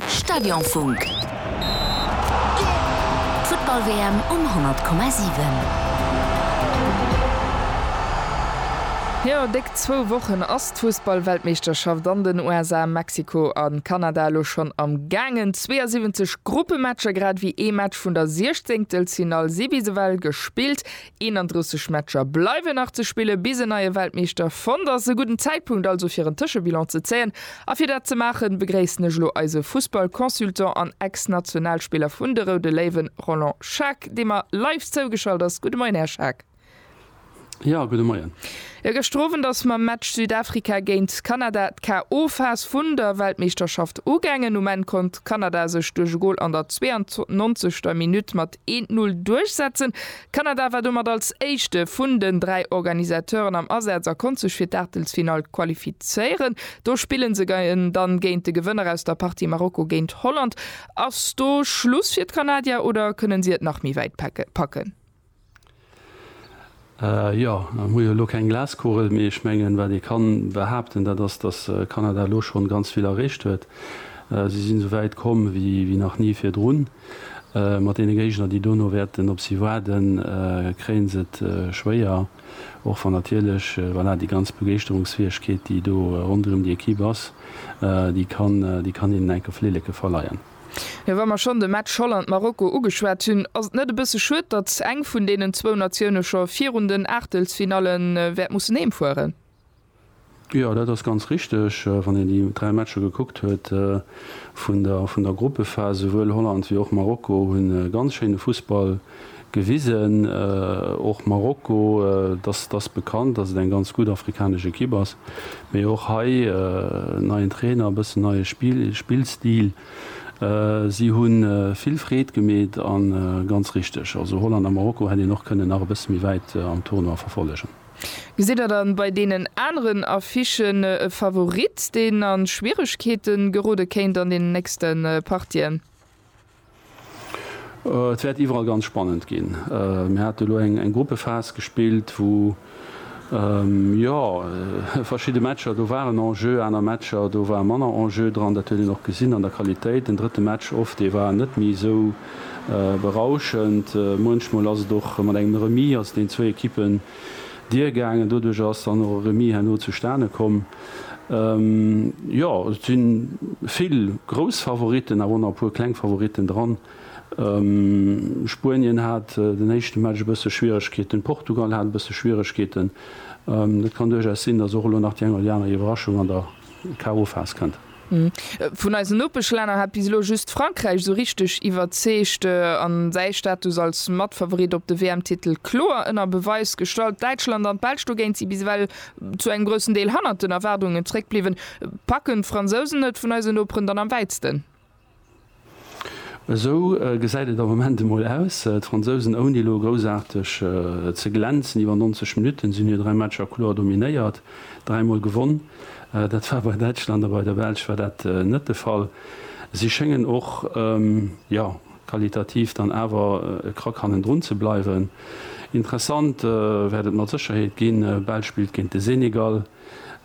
Stadionfunk. D'Futtball-WM um 100,7. Jo, déck zwou Wochen ass d'Fussball-Weltmeeschterschaft an den USA, Mexiko a Kanada elo schonn am gaangen. 72 Gruppematcher, grad ewéi ee Match vun der Siechzéngtelsfinall, si bis ewell gespillt. 31 Matcher bleiwen nach ze spillen, bis en neie Weltmeeschter fonnt ass. E gudden Zäitpunkt also fir en Tëschebilan ze zéien. A fir dat ze maachen, begréissen ech elo eise Fussball-Consultant an Ex-Nationalspiller vun de Roude Léiwen, Roland Schaack, dee mer live zougeschalt ass. Gudde Moien, Här Schaack. Jo, gudde Moien. Jo, gëschter Owend ass mam Match Südafrika géint Kanada d'KO-Phas vun der Weltmeeschterschaft ugaangen. Um Enn konnt Kanada sech duerch e Gol an der 92. Minutt mat eent Null duerchsetzen, Kanada war domat als éischte vun den dräi Organisateuren am Asaz a konnt sech fir d'Aachtelsfinall qualifizéieren. Do spillen se géien dann géint de Gewënner aus der Partie Marokko géint Holland. Ass do Schluss fir d'Kanadier oder kënnen si et nach méi wäit packen? Jo, ech hu jo elo keng Glaskugel, mee ech mengen, wat ee ka behaapten, dat ass, datt Kanada elo schonn ganz vill erreecht huet. Si sinn esou wäit komm wéi nach ni virdrun. Mat deene Géigner, déi dono wäerten op si waarden, kréien se et schwéier, och wann natierlech, voilà, déi ganz Begeeschterungsfäegkeet, déi do ronderëm déi Ekipp ass, déi kann, déi kann hinnen enk of Lilleke verleien. Jo, wa mer schonn de Match Holland-Marokko ugeschwat hunn, ass et net e bësse schued, datt eng vun deenen zwou Natioune scho virun den Aachtelsfinalle wäert mussen heem fueren? Jo, dat ass ganz richteg. Wann een déi dräi Matcher gekuckt huet vun der Gruppephas, souwuel Holland wéi och Marokko hu ganz schéine Fussball gewisen. Och Marokko, dass ass bekannt, dass et eng ganz gutt afrikanesch Ekipp ass, mee och hei neien Trainer, e bëssen neie Spillstil. Si hu vill Freed gemeet a ganz richteg, also Holland a Marokko hätt een och kënnen nach e bësse méi wäit am Tournoi verfollegen. Gesitt der dann bei deenen aneren Affichen e Favorit, deen a Schwieregkeete gerode kéint an deenen nächste Partien? Et wäert iwwerall ganz spannend ginn. Mir hate elo eng Gruppephas gespillt, wou jo verschidde Matcher do waren, Enjeu, aner Matcher do war manner Enjeu dran. Dat huet een och gesinn an der Qualitéit. Den drëtte Match of, dee war net méi esou berauschend. Muenchmol ass et och mat engem Remis, ass et den zwou Ekippen Dier gaangen. Doduerch ass dann och e Remis herno zustane komm. Jo, et si vill grouss Favoritten, awer och nach e puer kleng Favoritten dran. Spuenien hat den éischte Match e bësse Schwieregkeeten, Portugal hat e bësse Schwieregkeeten. Et kann duerchaus sinn, dass och elo nach déi eng oder déi aner Iwwerraschung an der KO-Phas kënnt. Vun eisen Nopeschlänner hat bis elo just Frankräich esou richteg iwwerzeegt an säi Status als Matfavorit op de WM-Titel kloer ënner Beweis gestallt. Däitschland an d'Belsch dogéint si bis ewell zu engem groussen Deel hannert den Erwaardungen zeréckbliwwen. Packen d'Fransousen et vun eisen Noperen dann am wäitsten? Esou gesäit et am Moment emol aus. D'Fransousen, ouni elo groussaarteg ze glänzen, iwwer 90 Minutten sinn hir 3 Matcher kloer dominéiert, dräimol gewonn. Dat war bei Däitschland a bei der Belsch war dat net de Fall. Si schéngen och, jo, qualitativ dann awer e Krack hannendrun ze bleiwen. Interessant wäert et mat Sécherheet ginn, Belsch spillt géint de Senegal.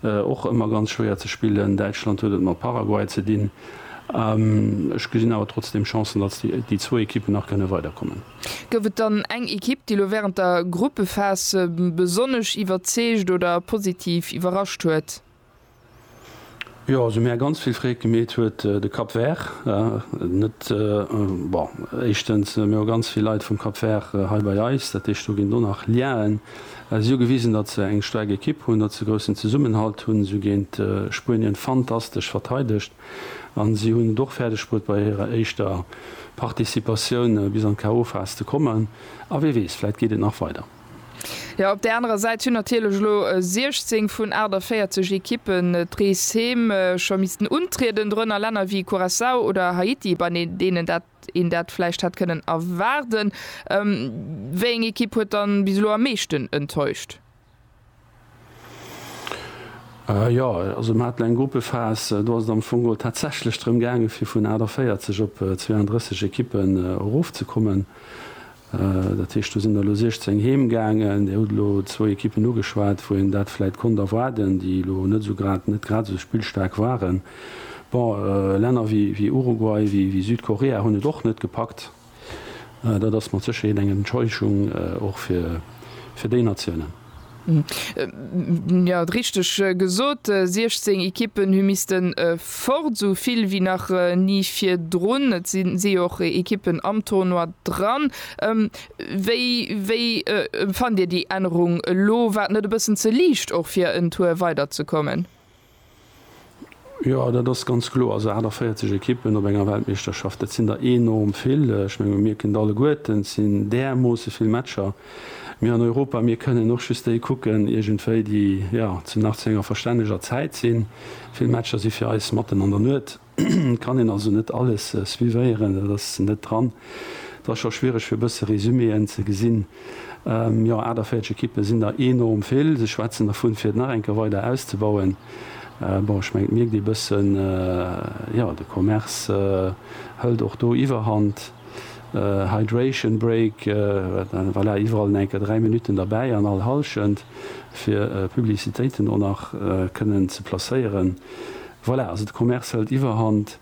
Och ëmmer ganz schwéier ze spillen. Däitschland huet et mat Paraguay ze dinn. Ech gesinn awer trotzdeem Chancen, datt déi zwou Ekippen nach kënne weiderkommen. Gouf et dann eng Ekipp, déi elo wärend der Gruppephase besonnesch iwwerzeegt oder positiv iwwerrascht huet? Jo, also mär ganz vill Freed gemeet huet de Cap Vert net. Bon, éischtens mär hu ganz vill Leit vum Cap Vert hei bei eis, dat heescht do ginn do nach Liaen. Si hu gewisen, datt se eng staark Ekipp hunn, datt se groussen Zesummenhalt hunn. Si hu géint Spuenien fantastesch verteidegt a si hunn et och fäerdeg bruet bei hirer éischter Participatioun bis an d'KO-Phas ze kommen. A wee weess, vläit geet et nach weider. Jo, op där anerer Säit hunn natierlech elo 16 vun 48 Ekippen d'Reeshäm scho missten untrieden, dorënner Länner wéi Curaçao oder Haiti, bei deenen dat een dat vläicht hätt kënnen erwaarden. Wéi eng Ekipp huet dann bis elo am meeschten enttäuscht? Jo, also mer haten eng Gruppephas, do ass et am Fong geholl tatsächlech drëm gaangen, fir vun 48 op 32 Ekippen erofzekommen. Dat heescht, do sinn der elo 16 heem gaangen. Dir hutt elo zwou Ekippen ugeschwat, wou een dat vläicht konnt erwaarden, déi elo net esou grad, net grad esou spillstaark waren. Bon, Länner wéi Uruguay, wéi Südkorea hunn et och net gepackt. Dat ass mat Sécherheet eng Enttäuschung, och fir déi Natiounen. Jo, richteg gesot, 16 Ekippen hu misste fort, esou vill wéi nach ni virdrun. Et si jo och Ekippen am Tournoi dran. Wéi fannt Dir déi Ännerung elo? War et net e bëssen ze liicht och fir en Tour weiderzekommen? Jo, dat ass ganz kloer. Also 48 Ekippen op enger Weltmeeschterschaft, dat sinn der enorm vill. Ech menge mir kënnt alleguerten, et sinn därmoosse vill Matcher. Mir an Europa, mir kënnen och just déi kucken iergendwéi, déi, jo, zum Nach zu enger verstänneger Zäit sinn. Vill Matcher si fir eis matten an der Nuet. Kann een also net alles suivéieren, dat ass net dran. Et ass scho schwiereg fir e bësse Resuméen ze gesinn. Jo, 48 Ekippe sinn der enorm vill. Se schwätzen dervun, fir et nach eng Kéier weider auszebauen. Bon, ech mengen et mierkt ee bëssen, jo, de Commerce hëlt och do Iwwerhand. Hydration break, voilà, iwwerall en enker 3 Minutten derbäi an all Hallschent, fir Publicitéiten och nach kënnen ze placéieren. Voilà, also de Commerce hëlt Iwwerhand.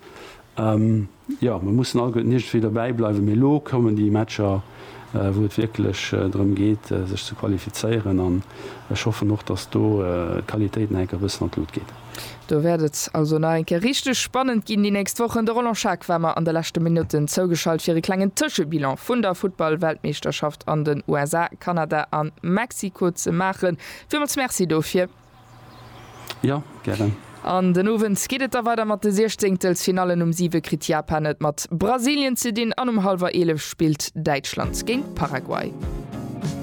Jo, mer mussen allguerten iergendwéi dobäi bleiwen, mee elo kommen déi Matcher, wou et wierklech drëm geet, sech ze qualifizéieren. An ech hoffen och, dass do d'Qualitéit nach eng Kéier e bëssen an d'Lut geet. Do wäert et also nach eng Kéier richteg spannend ginn déi nächst Wochen. De Roland Schaack war mer an de leschte Minutten zougeschalt fir e klengen Tëschebilan vun der Futtball-Weltmeeschterschaft an den USA, Kanada a Mexiko ze maachen. Villmools Merci dofir. Jo, gären. An den Owend geet et da weider mat de Siechzéngtelsfinallen. Um 7 kritt Japan et mat Brasilien ze dinn an um hallwer 11 spillt Däitschland géint Paraguay.